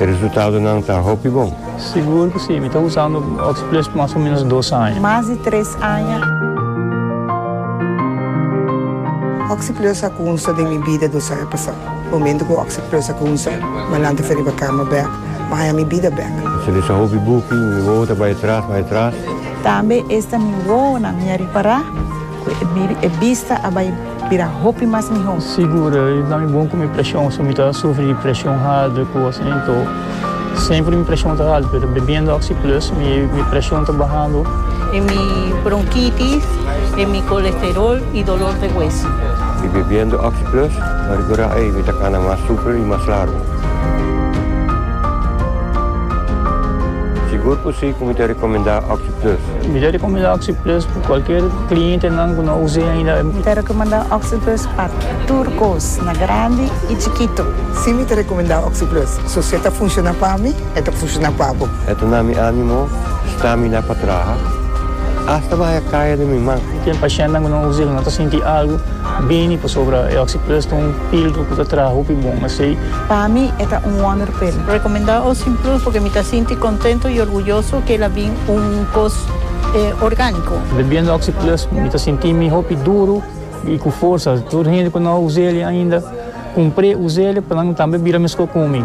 E resultadonan ta hopi bon. Sigur cu si, mi ta usando Oxplus mas o menos dos aña. Mas di tres aña. Oxplus a cunsa den mi bida dos aña pasa. Momento cu Oxplus a cunsa, Malan ta fe riba cama bek, ma aña mi bida bek. Mi ta lesa hopi buki, mi wowo ta bay atras, bay atras. Tambe esta mi wowonan mi a ripara cu e bista a bay. Bira hopi mas miho. Sigur i ta mi bon ku mi preshon, so mi ta sufri di preshon haltu i kos asin. Nto semper mi preshon ta haltu, pero bebiendo Oxi Plus mi preshon ta bahando. E mi bronkitis, e mi kolesterol i dolor de hueso. Mi bebiendo Oxi Plus ta rekurá ei mi ta kana mas super i mas largu. Sigur ku si ku mi ta rekomendá Oxi Plus. Mi ta rekomendá Oxi Plus Cualkier clientenan cu no a us'e ainda. Mi ta recomenda Oxyplus pa tur cos, na grandi y chikito. Si mi ta recomenda Oxyplus, so si e ta funciona pa mi, e ta funciona pa bo. E ta na mi animo stamina pa traha, hasta bahaya caya den mi man. Ten pacientnan cu no a us'e cu no ta sinti algo bini pasobra e Oxyplus ta un filtro cu ta traha hopi bon asey. Pa mi e ta un wonderpill. Recomenda Oxyplus porque mi ta sinti contento y orguyoso cu el a bin. un kos orgániko. Bebiendo Oxi Plus mi ta sinti mi hopi duru i ku forsa. Tur hende ku no a usa el ainda, kumpr'é, usa el pa nan tambe bira meskos ku mi.